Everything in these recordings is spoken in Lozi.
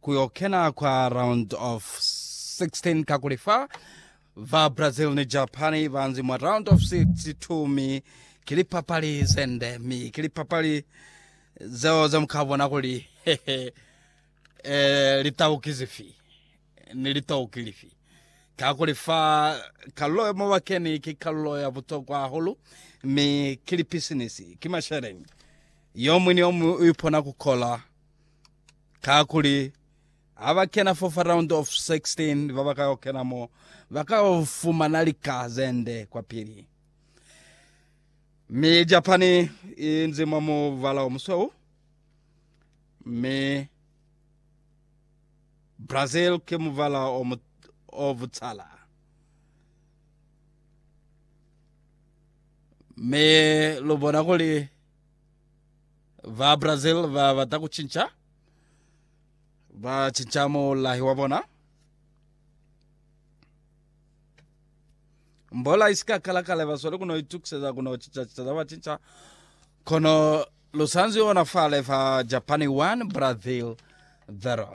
ku yo kena kwa round of 16 kakuli fa ba Brazil ni Japan ba nzi mwa round of 62 mi ki lipapali ze nde mi ki lipapali zeo ze mu ka bona kuli hehe eh, litau ki zifi ni litau ki lifi kakuli fa kalulo yo mabakeni ki kalulo ya butokwa hahulu mi ki lipisinisi ki masheleni yo mwi ni yo mwi u ipona ku kola Kakuli, ha ba kena fo fa round of 16, ba ba ka yo kena mo, ba ka yo fumana lika ze nde kwapili. Mi Japani i nzi mwa mubala o musweu, mi Brazil ki mubala o, mu, o butsala. Mi lu bona kuli Ba Brazil ba bata ku cinca, ba cinca mulahi wa bona. Mbola isi ka kala kale ba sweli kuno itukiseza kuno cinca cinca za ba cinca. Kono lu sanzwi ona fale fa Japan 1 Brazil 0.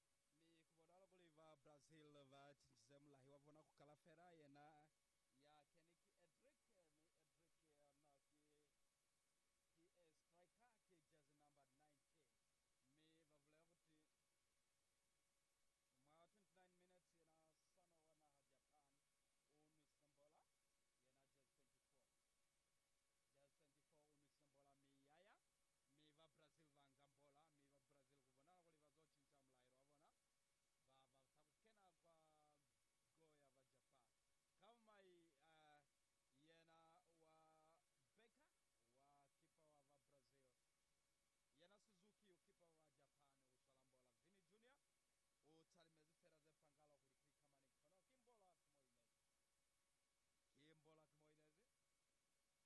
Mi ku bonala kuli ba Brazil ba cinjize mulahi wa bona ku kala fela. Yena ya keni ki Endrick, mi Endrick yena ki PA striker, ki jersey number 19. Mi ba bulela kuti mwa 29 minutes yena Sano wa naha Japan u nwisile mbola, yena jersey 24. Jersey 24 u nwisile mbola mi ya ya Mi ba Brazil ba nga mbola, mi ba Brazil ku bonala kuli ba zo cinca mulaelo wa bona, ba bata ku kena kwa go ya ba Japan. Ka mai a yena wa Becker wa kipa wa ba Brazil, yena Suzuki u kipa wa ba Japan u swala mbola. Vini Junior u talimezi fela ze pangahala kuli ku ikamani, kono ki mbola ki mo inezi. Ki mbola ki mo inezi.